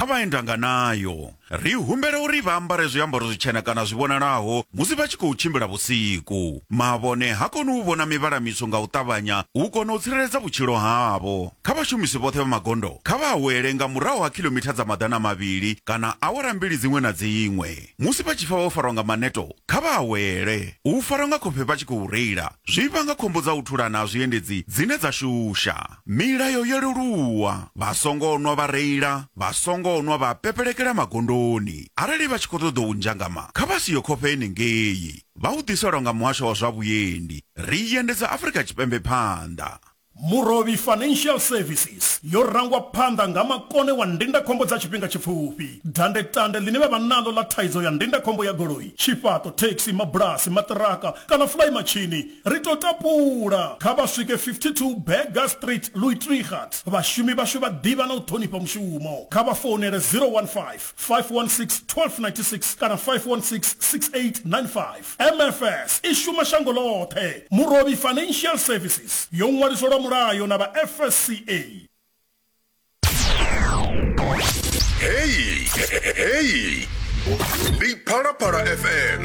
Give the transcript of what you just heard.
Kha vha enda nga nayo. Ri humbela uri vha ambare zwiambaro zwitshena kana zwi vhonalaho musi vha tshi khou tshimbila vhusiku. Mavhone ha koni u vhona mivhala mitswu nga u ṱavhanya u kona u tsireledza vhutshilo havho. Kha vhashumisi vhoṱhe vha magondo, kha vha awele nga murahu ha khilomitha dza maḓana mavhili kana awara mbili dziṅwe na dziṅwe. Musi vha tshi pfa vho farwa nga maneto, kha vha awele. U farwa nga khofhe vha tshi khou reila zwi vhanga khombo dza u thulana ha zwiendedzi dzine dza shusha. Milayo yo leluwa, Vha songo nwa vha reila, vha songo nwa vha pepelekela magondoni. Arali vha tshi khou ṱoḓa u nzhangama, kha vha si yo khofhe henengei. Vha u ḓiselwa nga Muhasho wa zwa Vhuendi. Ri endedza Afrika Tshipembe phanḓa. Murovhi Financial Services yo rangwa phanḓa nga makone wa ndindakhombo dza tshifhinga tshipfufhi. Dandetande ḽine vha vha naḽo ḽa thaidzo ya ndindakhombo ya goloi, tshifhaṱo, thekhisi, mabulasi, maṱiraka kana fulaimatshini Ri tou tapula, kha vha swike 52 Burger Street, Luitregat. Vhashumi vhashu vha ḓivha na u ṱhonifha mushumo. Kha vha founele 015 516 1296 kana 516 6895. MFS i shuma shango ḽoṱhe. Murovhi Financial Services yo ṅwaliswa lwa mulayo na vha FSCA. Heyi, heyi, ndi Phalaphala FM.